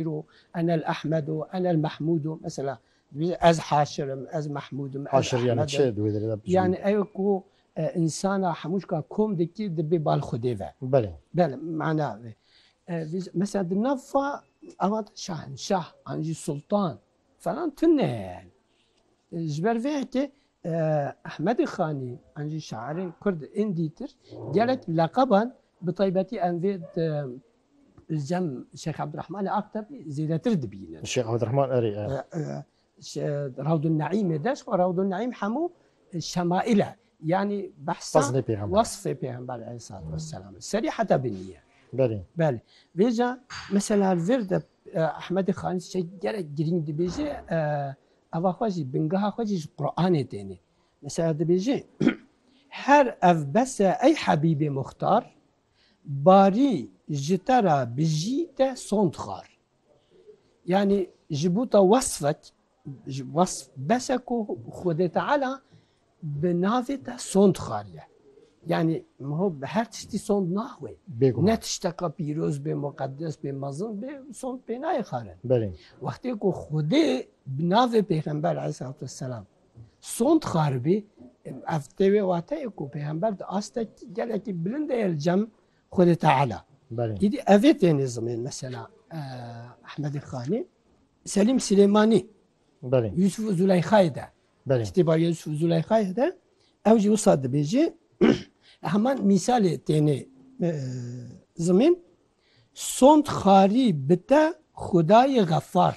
îro enel Ehmed û enel Mehmûd û mesela divê ez haşir im, ez Mehmûd im, ez Ehmed im. Yanî ew ku însana hemû jika kom dikî dibê bal Xwedê ve. Belê. Belê mana vê. Mesela di nav fa ava de şahinşah an jî sultan falan tune ye yanî. Ji ber vê yekê Ehmedê Xanî an jî şairên Kurd ên dîtir gelek leqeban bi taybetî em vê di Li cem Şêx Ebdurehmanê Aktebî zêdetir dibînin. Şêx Ebdurehman erê e. Rawdunneîmê de ji bo Rawdunneîm hemû şemaîl e. Yanî behsa wesfê Pêxember Eleyhisselatü Vesselam e. Serî heta binî ye. Belê. Belê. Vêca mesela li vir de Ehmedê Xanî ştêk gelek girîng dibêje eva xwe jî bingeha xwe jî ji Quranê têne. Mesela dibêje her ev bes e ey Hebîbê Muxtar Barî ji te re bijî te son dixwar. Yanî ji bo te wesfek ji wesf bese ku Xwedê Teala bi navê te son dixwariye. Yanî miho bi her tiştî son naxwê. Ne tişteka pîroz bê, muqeddes bê, mezin bê son pê nayê xwarin. Wextê ku Xwedê bi navê Pêxember Aleyhisselatu Vesselam Sond xaribî, ev tê wê wateyê ku pêxember di astek gelekî bilind de ye li cem Xwedê Teala. Îdî ev ê têne zimên mesela Ehmedê Xanî, Selîm Silêmanî, Yusuf û Zuleyxayê de. Kitêba Yusuf û Zuleyxayê de ew jî wisa dibêjê heman mîsalê têne zimên Sond xarî bite Xwedayê xefar.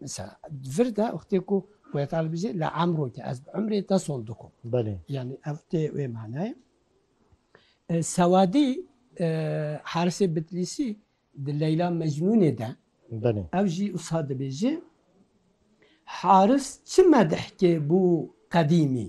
Mesela vir de wextê ku wê talibizê li emro ke ez bi emrê te sol dikom. Belê. Yani ev tê wê manayê. E, Sewadî e, Harisê Bitlîsî di Leyla Mecnûnê de Belê. ev jî wisa dibêje Haris çi medihkê bû qedîmî.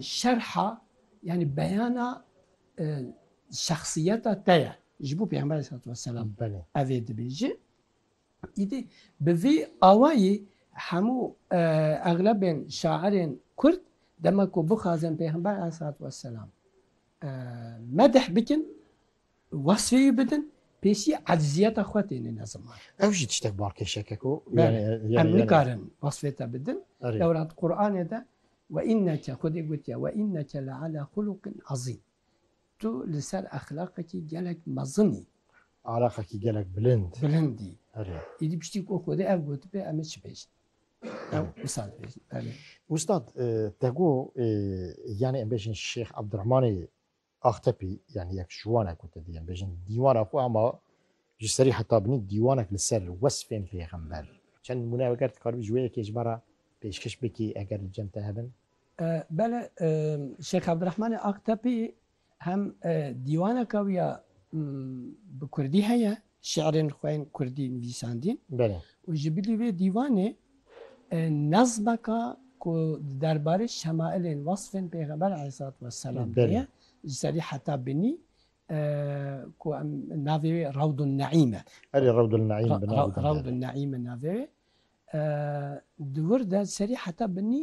Şerha yanî beyana şexsiyeta te ye ji bo Pêxemberê selatû weselam ev ê dibêjin. Îdî bi vî awayî hemû exlebên şairên Kurd dema ku bixwazin Pêxember aleyhisselatû wesselam medih bikin Wesfê wî bidin, pêsî ecziyeta xwe têne ne ziman. Ew jî tiştek balkêşek e ku em nikarin wesfê te bidin. Dewra di Quranê de we înneke Xwedê gotiye we înneke le ala xuluqin ezîm. Tu li ser exlaqekî gelek mezinî. Alaqekî gelek bilind. Bilindî. Îdî piştî ku Xwedê ev gotibe em ê çi bêjin? Ew wisa dibêjin. Belê. Ustad te got yanî em bêjin Şêx Ebdirehmanê Axtepî yanî yek ji wan e ku te dê em bêjin dîwana xwe ama ji serî heta binî dîwanek li ser wesfên pêxember. Çend nimûne eger dikaribî ji wê yekê ji me re pêşkêş bikî eger li cem te hebin? Bele, Şêx Evdirehmanê Axtepî hem dîwaneke wî ya bi kurdî heye Şiirên xwe yên kurdî nivîsandîn û ji bilî vê dîwanê nezmeke ku derbarê şemailên, wesfên Pêxember aleyhisselatü vesselam de ye, ji serî heta binî ku em navê wê Rewdun Neîm e. Erê Rewdun Neîm bi navê de. Rewdun Neîm e navê wê. Di wir de serî heta binî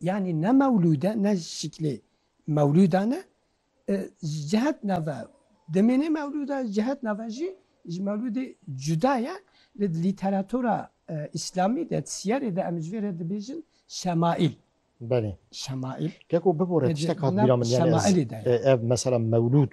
Yanî ne mewlûd e, ne ji şiklê mewlûdan e. Ji cihet nava dimîne mewlûd e, ji cihet nava jî ji mewlûdê cuda ye. Lê di lîteratura îslamî de, di siyarê de em ji vê re dibêjin şemaîl. Belê. Şemaîl. Lê ku bibore tiştek hat bîra min, yanî ez ev mesela mewlûd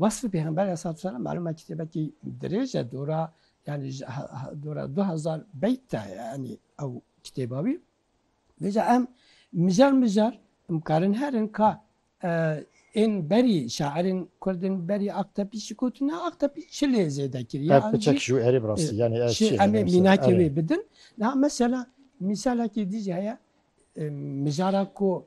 Wasfê Pêxember Aleyhisselam malum e kitêbekî dirêj e dora yani dora du hezar beyt e yani ew kitêba wî. Vêca em mijar mijar em karin herin ka ên berî şairên kurdên berî Aktepî jî gotin na Aktepî çi lê zêde kiriye. Ev piçek jû erê bi rastî yani ez çi em ê mînakê wê bidin. Na mesela mîsalekî dî jî heye mijara ku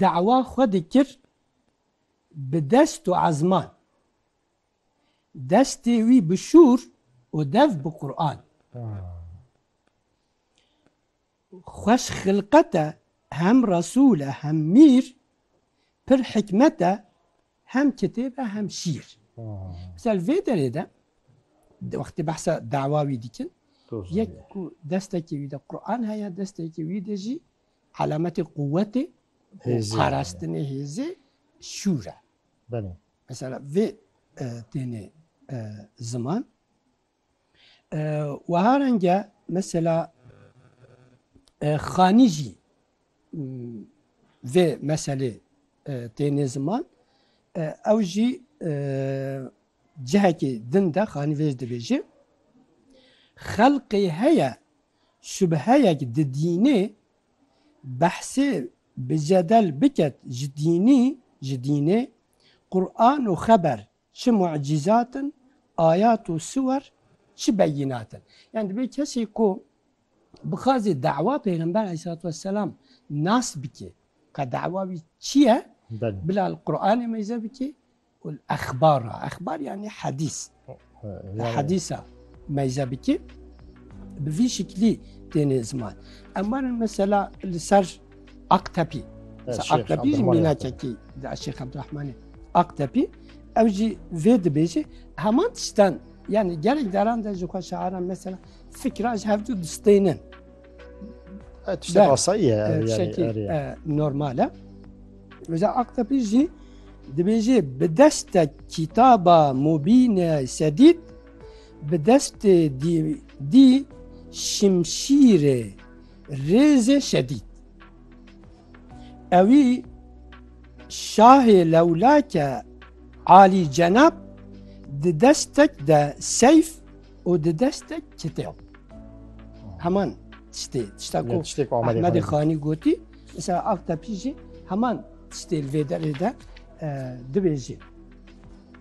Dawa xwe dikir bi dest û ezman. Destê wî bi şûr û dev bi Quran. Xweş xilqet e hem Resûl e hem mîr, pir hikmet e hem kitêb e hem şîr. Misal vê derê de wextê behsa dawa wî dikin yek ku destekê wî de Quran heye, destekê wî de jî Alametê quwetê û Hêzê. parastinê hêzê şûr e. Belê. Mesela vê e, tênê e, ziman. E, Weha renge mesela e, xanî jî m, vê meselê e, tênê ziman. E, Ew jî e, cihekê din de xanî vêj dibêje. Xelqê heye Şubheyek di dînê behsê bi cedel biket ji dînî ji dînê Quran û xeber çi mucîzat in, ayat û siwer çi beyînat in. Yan divê kesê ku bixwazê dawa pêxember aleyhîsselatû vesselam nas bike ka dawa wî çi ye bila li Quranê meyze bike Elexbara, exbar yanî hedîs, hedîsa mezhebikî bi vî şiklî têne ziman. Em werin mesela li ser Aktepî. Aktepî jî mînakekî Şêx Ebdurehmanê Aktepî ew jî vê dibêje heman tiştan yani gelek caran de ji xwe şiaran mesela fikra ji hev du distênin. E, tiştek Ber. asayî ye ev yani, Şekî erê. e, normal e. Mesela Aktepe jî dibê jî bi deste kitaba mubîne sedît bi destê dî dî şimşîrê rêzê şedît. Ewî şahê lewlake alî cenab di destek de seyf û di dest de çitê o. Heman tiştê tişta ku Ahmedê Xanî gotî mesela Aktepî jî heman tiştê li vê derê de dibêjî.